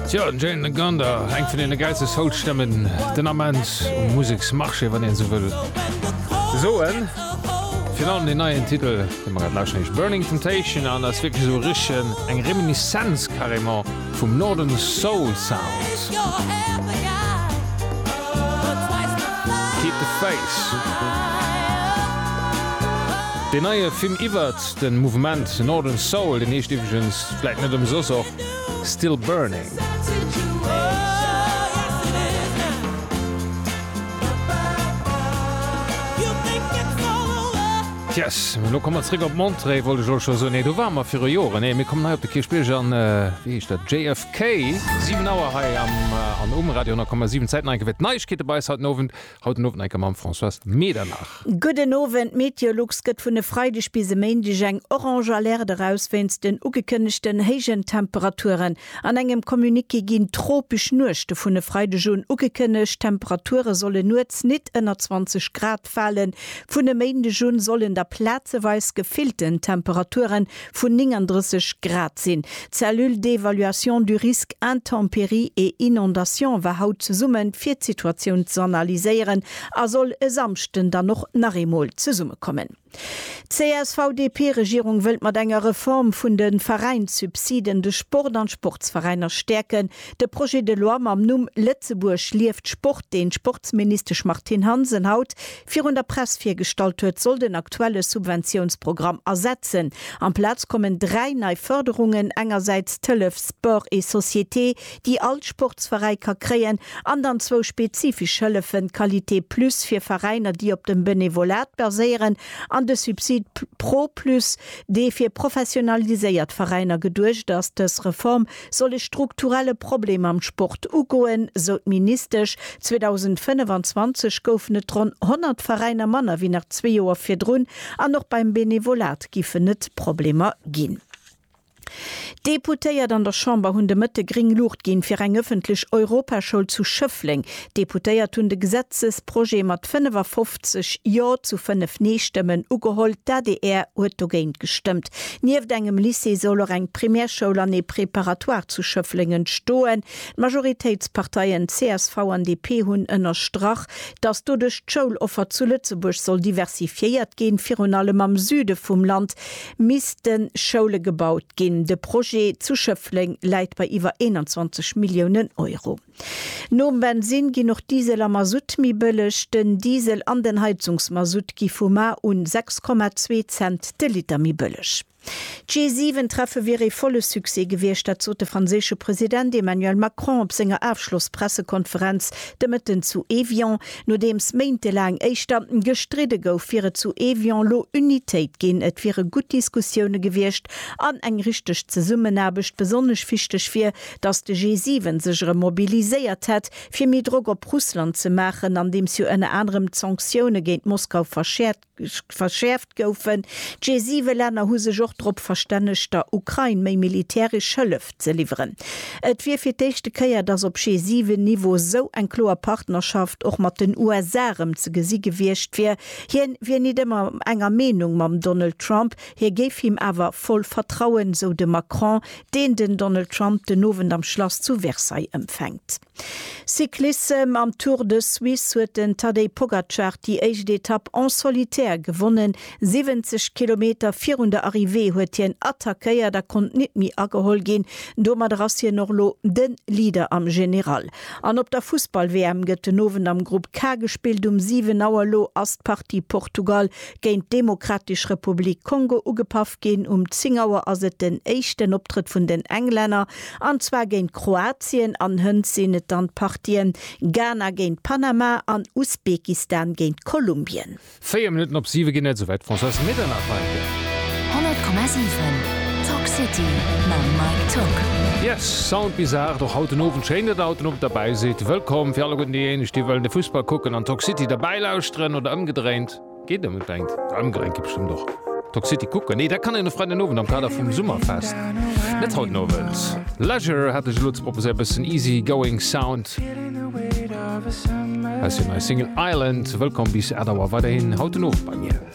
Tjo, den Jane Gander, eng vun deene gäilste Soul-Stëmmen den Ament um Museksmarché, wann een esou wëll soen. Virun allem deen neien Titel, dee mer grad lauschen, heescht Burning Temptation an ass wierklech esou richtegen eng Reminiszenz carrément vum Northern Soul Sound. Keep the Faith, deen neie Film iwwert de Mouvement Northern Soul, deen heescht iwwregens vläit net ëmsoss och. Still Burning. Yes, lo komme mer zréck op Montré, wollt ech och scho soen. Nee, do ware mer viru Joren. Nee, mir kommen hei op de Kierchbierg an, wéi heescht dat, JFK. 7 Auer hei am an um Radio 10,7. Zäit, nei gewëllt Neiegkeete bei eis haut den Owend. Haut den Owend enker mam Françoise Medernach. Gudden Owend, d'Meteolux gëtt vun e Freideg bis e Méindeg eng Orange Alerte eraus wéinst den ugekënnegten héijen Temperaturen. An engem Communiqué ginn tropesch Nuechte vun e Freideg un ugekënnegt. D'Temperature solle nuets nit ënner 20 Grad falen. Vun e Méindeg un sollen da plazeweis gefillten Temperaturen vun 39 Grad sinn. D'Cellule d'évaluation du risque intempéries et inondations war haut zesumme fir d'Situatioun z'analyséieren a soll e Samschden dann och nach eemol zesummekommen. D'CSV-DP-Regierung wëllt mat enger Reform vun de Veräinssubsiden de Sport an d'Sportsveräiner stäerken. De Projet de loi mam Numm Lëtzebuerg lieft Sport, deen d'Sportsministesch Martine Hansen haut virun der Press virgestallt huet, soll den aktuelle Subventiounsprogramm ersetzen. Amplaz kommen dräi nei Fërderungen, engersäits d'Hëllef Sport et Société, déi all Sportsveräi ka kréien, an dann zwou spezifesch Hëllefen, Qualité Plus fir Veräiner, déi op dem Benevolat baséieren, an de Subsid Pro Plus, dee fir professionaliséiert Veräiner geduecht ass. Dës Reform soll e strukturelle Problem am Sport ugoen, sou d'Ministesch. 2025 goufen et ronn 100 Veräiner manner wéi nach zwee Joer virdrun an och beim Benevolat giffen et Problemer ginn. D'Deputéiert an der Chamber hunn de Mëtte gréng Luucht ginn, fir eng ëffentlech Europaschoul zu Schëffleng. D'Deputéiert hunn de Gesetzesprojet mat 55 70 Jo zu 5 Nee-Stëmmen ugeholl. D'ADR huet dogéint gestëmmt. Nieft engem Lycée soll och eng Primärschoul an ee Préparatoire zu Schëffleng entstoen. D'Majoritéitsparteien csv an DP hunn ënnerstrach, datt doduerch d'Schouloffer zu Lëtzebuerg soll diversifiéiert ginn. Virun allem am Süde vum Land misste Schoule gebaut ginn. De Projet zu Schëffleng läit bei iwwer 21 Milliounen Euro. Nom Bensin ginn och Diesel a Masutt méi bëlleg. Den Diesel an den Heizungsmasutt gi vu mar un 6,2 Cent de Liter méi bëlleg. D'G7-Treffe wier ee volle Succès gewiescht, dat sot de franséische President Emmanuel Macron op senger Afschloss-Pressekonferenz de Mëtten zu Evian. Nodeems méintelaang éischter gestridde gouf, wier et zu Evian lo Unitéit ginn. Et wiere gutt Diskussioune gewiescht an eng richteg Zesummenaarbecht. Besonnesch wichteg wier, datt de G7 sech erëm mobiliséiert hätt, fir méi Drock op Russland ze maachen, andeems jo ënner anerem d'Sanktioune géint Moskau verschäerft goufen. D'G7-Länner hu sech och drop verstännegt, der Ukrain méi militäresch Hëllef ze liwweren. Et wier fir d'éischte Kéier, datt op G7-Niveau esou eng kloer Partnerschaft och mat den USA erëm ze gesi gewiescht wier. Hien wier nit ëmmer enger Meenung mam Donald Trump, hie géif him awer voll vertrauen, sou de Macron, deen den Donald Trump den Owend am Schlass zu Versailles ëmfänkt. Cyclissem Am Tour de Suisse huet den Tadej Pogacar déi éischt Etapp en solitaire gewonnen. 70 Kilometer virun der Arrivée huet hien attackéiert a konnt nit méi ageholl ginn. Domadder ass hien och lo de Leader am General. An op der Fussball-WM gëtt den Owend am Grupp K gespillt. Um 7 Auer lo ass d'Partie Portugal géint d'Demokratesch Republik Kongo ugepaff. ginn. Um 10 Auer ass et den éischten Optrëtt vun den Englänner, an zwar géint Kroatien, an hënt sinn et dann d'Partien Ghana géint Panama an Usbekistan géint Kolumbien. Véier Minutten op siwe ginn et, souwäit d'Françoise Medernach-Walker. 100,7 Talk City mam Mike Tock. Yes, Sound bis 8 och haut den Owend. Schéin, datt der haut den Owend derbäi sidd. Wëllkomm fir alleguerten déijéineg, déi wëllen de Fussball kucken an Talk City derbäi lauschteren, oder ëmgedréint. Geet ëm e klengt Daumgelenk, geet bestëmmt och. Toxicity kucken? Nee, dat kann een e Freiden Owend am Kader vum Summerfest, net haut Owend. Leisure hat ech elo ze proposéieren, e bëssen easy going Sound aus hir neier Single Island. Wëllkomm bis 8 Auer weiderhin haut den Owend bei mir.